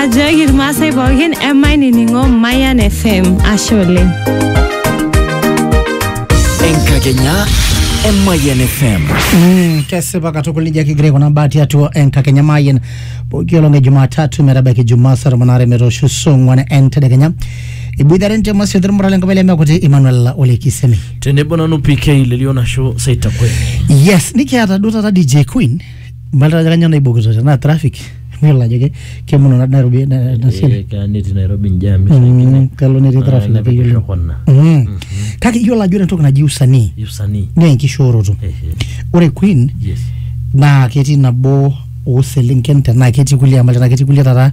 Ajoki irmaasai pookin emainining'o Mayan FM. Ashe oleng. enkakenya emayian fm Mm, kesipa katukul nejia kigira aikunaa mbaa tiatua enkakenya mayian pooki olong e jumatatu metabaiki jumaa saa tomon aare metoosho saa ong'uan entedekenya iboitare ntema siote irmuran lenkop ele mekuti Emmanuel Ole Kisemi tenebo nanu pk lelio nasho saitakweni yes nikiata duo taata DJ Queen Mbalita ajo kanyioo naibokito tenaa traffic mayiolo ajo ke- kemono na- Nairobi na- na siai. Eh, keya netii Nairobi jam Mm, ishaikine. kalo netii Ah, traffic nepik keyiolo. irrokona. Mm. Kake iyiolo ajo ore entoki naji usanii Usanii. naa enkishooroto. Eh, eh, Ore Queen yes. naa ketii nabo ooselenken tenaa ketii kulie amu tenaa ketii kulie taata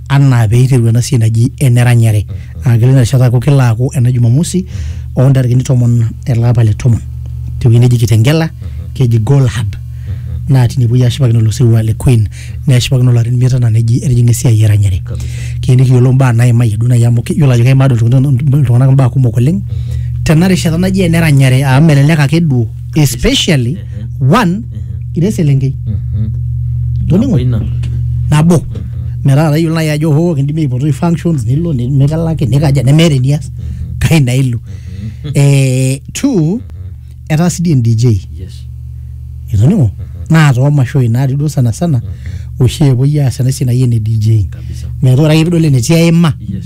anaa pee eiteru ena siai naji eneranyare aa kelo ina rishata aaku kelo aaku ena jumamosi oo ntarikini tomon ele apa le tomon tewueji neji kitengela keji goal hub naa tine puoi ashipakino ilo sirua le queen neshipakino ilarin imiet anaa neji etijing'a esiai eranyare Kabisa. kiyieu nikiyiolou imbaa naimayie duo naaji amu kiyiolo ajo keimaa duo iltung'anak iltung'anak imbaa kumok oleng tena rishata naji eneranyare amu melelek ake duo especially one ira eselenkei Toning'o? Ina. nabo metaa tayiolo naaji ajo hoo kindimi aipotoi functions nilo ni- mikalaki nikaja nemeeta enias kai naa ilo eh, two etaa sii dii en-dj Yes. itoning'o naa toomashoi natii duo sana sana oshi epuoi aas ena siai naji ene dj Kabisa. metaa ore ake pidol enetii aima Yes.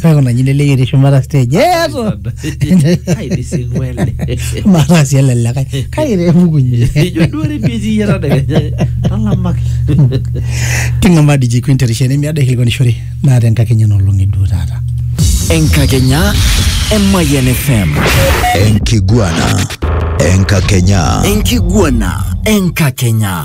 kuna nyine leyie etii shumata stage eeto aidisimu ele mataa sii ele likae kake temukunye ijo duo repeat iyie tadekenya talamak king'amaa DJ Queen terishata nemiado aikilikwanishore naa tenkakenya nolong'i duo taata enkakenya emayian fm Enkiguana. Enkakenya. enkiguana enkakenya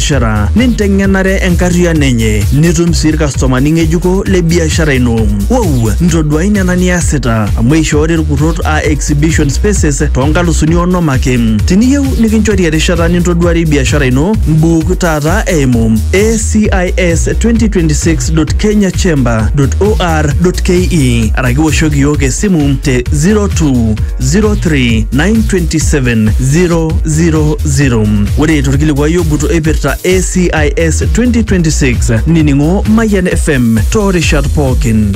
biashara ninteng'enare enkarriano enye nitum sii irkastomani ng'ejuko le biashara ino. Wow, ntoduai nena niasita amu eishoori irkurrot aa exhibition spaces too nkalusuni onom ake. Tiniyieu nikinchori erishata nintoduarie biashara ino, mbuuk taata eimu acis2026.kenyachamber.or.ke araki woshoki iyiook esimu te 0203927000. zero ore torkilikuai ogut oipirta ACIS 2026 nining'o Mayian FM toorishat pookin.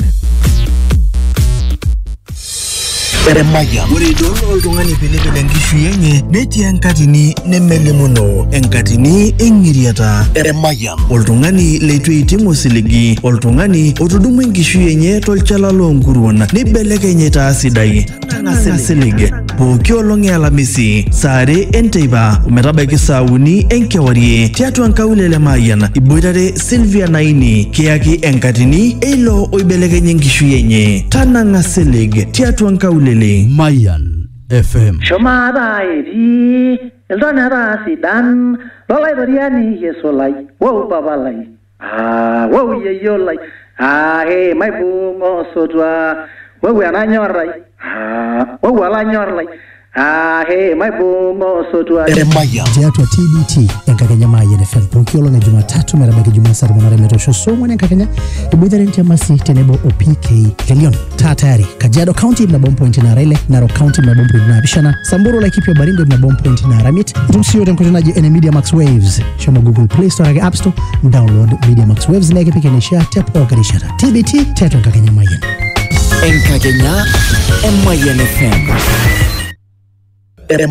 Eremaya. Ore idol oltung'ani pilipil enkishui enye netii enkatini nemelimuno, enkatini eng'iriata. Eremaya. Oltung'ani leitu eiting osiligi, oltung'ani otudumua enkishui enye tolchala loonkuruon neibelekeny aitaa sidai. Tang'asa silig pooki olong e Alamisi saa are enteipa ometabaiki saa uni enkewarie tiatua nkaulele Mayian iboitare Sylvia Naini kiyaki enkatini eilo oibelekenya enkishui enye. Tanang'a silig tiatua nkaulele. Mayan FM. Shumata etii iltoneta sidan lolaitoriani Yesu lai, wou Papa lai. Aa, wou yeyio lai. Aa, hee, maibung osotua. Wou enanyor ai. Aa, wou olanyor lai. Aa, hee, maibung osotua. Emayian tiatua TBT enkakenya Mayian FM pooki olong e Jumatatu metabaiki Jumaa saa tomon are metoosho saa ong'wan enkakenya iboitare Ntiamasi tenebo o PK Kelion. taa tayari kajiado county ibna bom point nara ile narok county ibna bom point naapishana samburu laikipia baringo ibna bom point nara mit itum siyo tenkoitoi naji ene media max waves shomo google play store ake app store download media max waves nekipik eneshia te pooki rishata tbt tiatua enkakenya mayian Enkakenya Emayian FM. Emayian.